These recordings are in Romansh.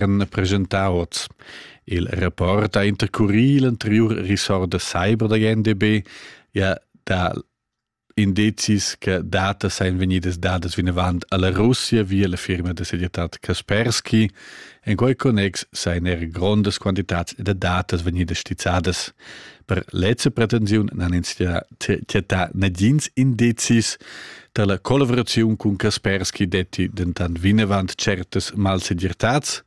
han preschentau oz. Il rapport ha intercurì l'anteriur ressort da cyber da GNDB ja da indizis che data seien venidas dadas vinavant alla Russia via la firma da segretat Kaspersky. En quei connex seien er grondas quantitats da datas vegnidas stizzadas. Per lezza pretensiun nan ins tiatà nagins indizis Dalla collaboraziun cun Kaspersky detti dentant vinavant certas malsegirtads.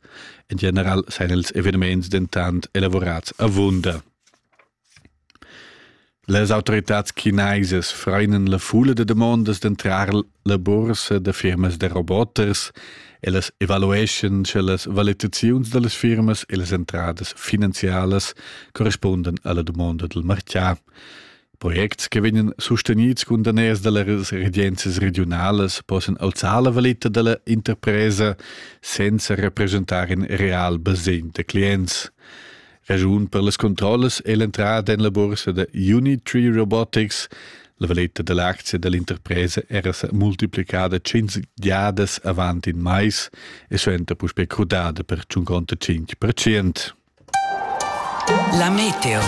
En general seien els eveniments dentant elaborats avunda. Les autoritats chineisas freinen la fulla de demandas d'entrar la bursa de firmas de roboters e las evalueschen sche las valutaziuns dallas firmas e las entradas finanzialas correspunden alla domanda del martià. Projects che vegnan sustenids cun daners da las regenzias regiunalas possan alzar la valita da la interpresa senza represchentar in real basegn da clients. Ragiun per las controllas è l'entrada en la bursa da Unitree Robotics. La valeta da l'aczia da l'interpresa era sa multiplicada tschintg giadas avant in mais e suenter puspè crudada per 55%. La meteo.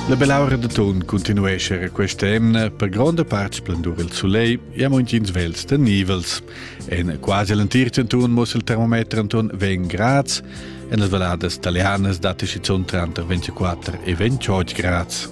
La belaura de ton continuesce questa emna per gronda part splendur il soleil e a montins vels de nivels. En quasi l'entir centun muss il termometer anton 20 grads, en las valladas italianas date schizunt tranter 24 e 28 grads.